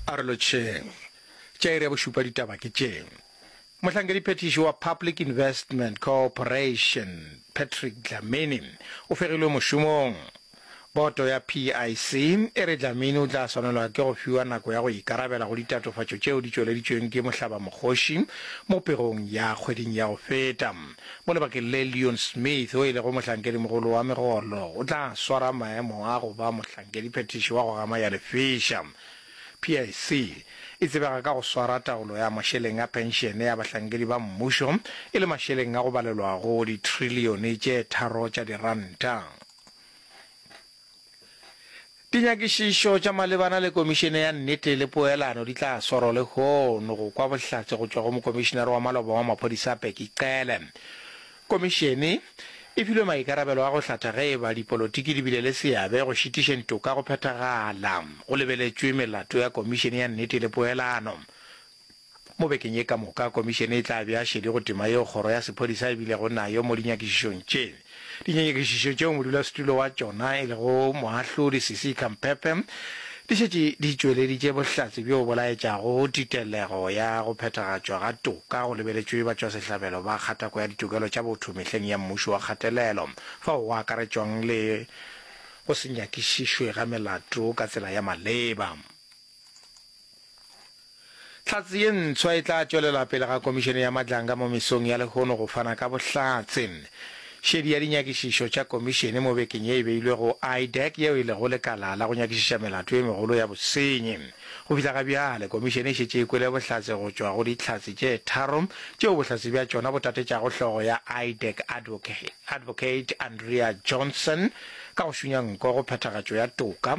A re lotšheng. Tša iri ya bošupa ditaba ke tše. Mohlankedi-phethiši wa Public Investment Cooperation, Patrick Dlamini, o fegilwe mošomong. Boto ya PIC e re Dlamini o tla swanelwa ke go fiwa nako ya go ikarabela go ditatofatšo tšeo di tšweleditšweng ke mohlabamokgoši mo pegong ya kgweding ya go feta. Mo lebakeng le, Leon Smith, yo e lego mohlankedi-mogolo wa megolo, o tla swara maemo a go ba mohlankedi-phethiši wa go gama ya lefeša. PIC e tsebega ka go swara taolo ya mašeleng a phenšene ya bahlankedi ba mmušo, e le mašeleng a go balelwa go ditrillione tše tharo tša diranta. Dinyakišišo tša malebana le Komišene ya Nnete le Poelano di tla swarwa lehono go kwa bohlatse go tšwa go Mokomišenare wa Maloba wa Maphodisa Bheki Cele. Komišene e filwe maikarabelo a go hlatha ge e ba dipolotiki di bile le seabe go šitišeng toka go phethagala go lebeletšwe melato ya Komišene ya Nnete le Poelano. Mo bekeng ye ka moka, Komišene e tla bea šedi go tema yeo kgoro ya sephodisa e bilego nayo mo dinyakišišong tše. Dinyanyakišišo tšeo modulasetulo wa tšona e lego Moahlodi Cissy Khampepe di šetše di tšweleditše bohlatse bjo bo laetšago titelego ya go phethagatšwa ga toka go lebeletšwe batšwasehlabelo ba kgatako ya ditokelo tša botho mehleng ya mmušo wa kgatelelo fao go akaretšwang le go se nyakišišwe ga melato ka tsela ya maleba. Hlatse ye ntshwa e tla tšwelela pele ga Komišene ya Matlanga mo Mesong ya lehono go fana ka bohlatse. Šedi ya dinyakišišo tša Komišene mo bekeng ye e beilwe go IDAC yeo e lego lekala la go nyakišiša melato e megolo ya bosenyi. Go fihla ga bjale, Komišene e šetše e kwele bohlatse go tšwa go dihlatse tše tharo tšeo bohlatse bja tšona bo tatetšago hlogo ya IDAC Advocate Andrea Johnson ka go šunya nko go phethagatšo ya toka,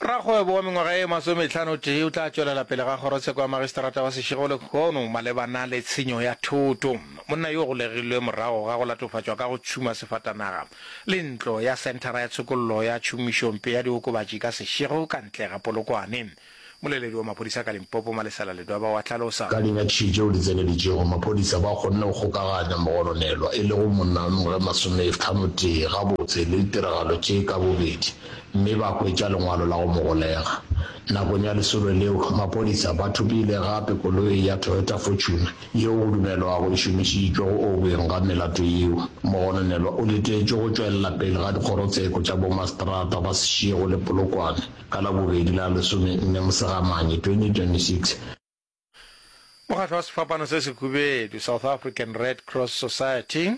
Rakgwebo wa mengwaga e masometlhanotee o tla tšwelela pele ga kgorotsheko ya magistrata wa Seshego lekgono malebana le tshenyo ya thoto. Monna yo o golegilwe morago ga go latofatšwa ka go tšhuma sefatanaga le ntlo ya senthara ya tshokollo ya tšhomišompe ya diokobatši ka Seshego ka ntle ga Polokwane. Moleledi wa maphodisa ka Limpopo, Malesela Ledwaba wa hlalosa. Ka dinyakišišo tšeo di tseneletšego, maphodisa ba kgonne go kgokaganya mogononelwa e lego monna ge masomethano-tee gabotse le ditiragalo tše ka bobedi mme ba hwetša lengwalo la go mo golega. Nakong ya lesolo leo, maphodisa ba thopile gape koloi ya Toyota Fortuner yeo go dumelwago e šomišitšwe go objeng ga melato yeo. Mogononelwa o letetšwe go tšwelela pele ga dikgorotsheko tša bomaseterata ba Seshego le Polokwane. ka Labobedi la lesomenne Mosegamane 2026. Mokgatlo wa sefapano se sehubedu, South African Red Cross Society,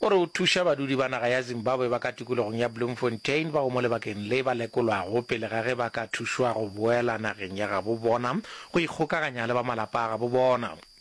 o re o thuša badudi ba naga ya Zimbabwe ba ka tikologong ya Bloemfontein bao mo lebakeng le ba lekolwago pele ga ge ba ka thušwa go boela nageng ya gabo bona go ikgokaganya le ba malapa a gabo bona.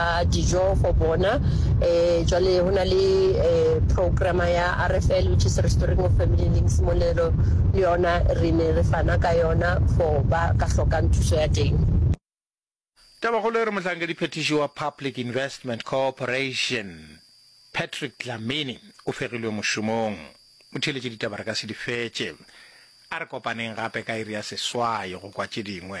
a dijo for bona um jwale go na le um programa ya rfl which is restoring of family links mo le yona re ne re fana ka yona for ba ka hlokang thuso ya teng Tabakgolo e re mohlankediphethiši wa Public Investment Corporation, Patrick Dlamini o fegilwe mošomong. Motheeletše ditaba re ka se di fetše. A re kopaneng gape ka iri ya seswai go kwa tše dingwe.